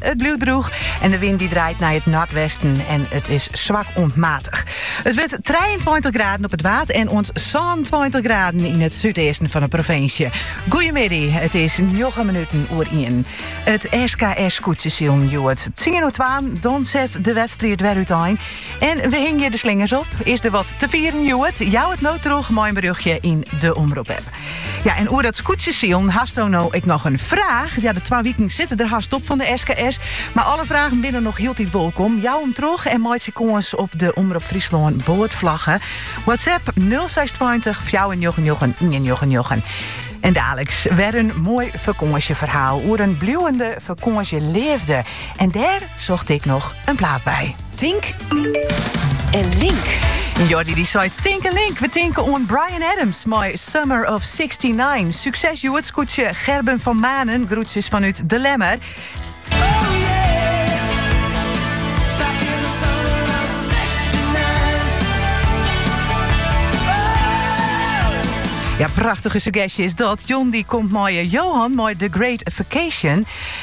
It bliuwt drûch en de wyn die draait nei it noardwesten en it is swak oant matich. It wurdt 23 graden op it Waad en sa'n 26 graden yn it súdeasten fan de provinsje. Goeiemiddy, it is 9 minuten oer 1. It SKS-skûtsjesilen hjoed 10 oer 2, dan set de wedstrijd wer uitein. En we hingje de slingers op. Is der wat te fieren hjoed? Jou it no troch mei in berjochtje yn de Omrop-app. Ja, en oer dat skûtsjesilen, hasto no ek noch in fraach? Ja, de twa wiken sitte der hast op fan de SKS, mar alle fragen binne noch hieltyd wolkom. Jou him troch en meitsje kâns op de Omrop Fryslân boatflagge. WhatsApp nul seis tweintich fjouwerennjoggennjoggen iennjoggennjoggen. En daliks wer in moai fakânsjeferhaal oer in bliuwende fakânsjeleafde. En dêr socht ik noch in plaat by. Tink en Link. Jordi dy seit Tink en Link. We tinken oan Bryan Adams mei Summer of 69. Súkses Jouster skûtsje Gerben van Manen. Groetjes vanuit De Lemmer. Ja, prachtige suggestje is dat. John dy komt mei eh, Johan, mei The Great Vacation.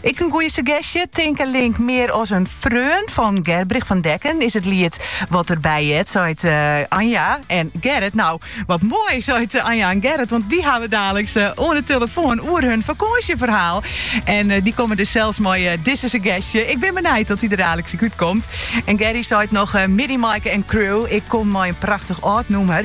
Ek in goeie suggestje. Tink en link mear as in freon fan Gurbe van Dekken is it liet wat der by heart, seit Anja en Gerrit. Nou, wat moai, seit Anja en Gerrit, want dy hawwe we daliks oan 'e tillefoan oer hun fakânsjeferhaal. En dy komme dus sels mei dizze suggestje. Ik bin benijd oft dy der daliks ek út komt. En Gerry seit noch, Middy Maaike en Crew, ik kom mei in prachtich âld nûmer.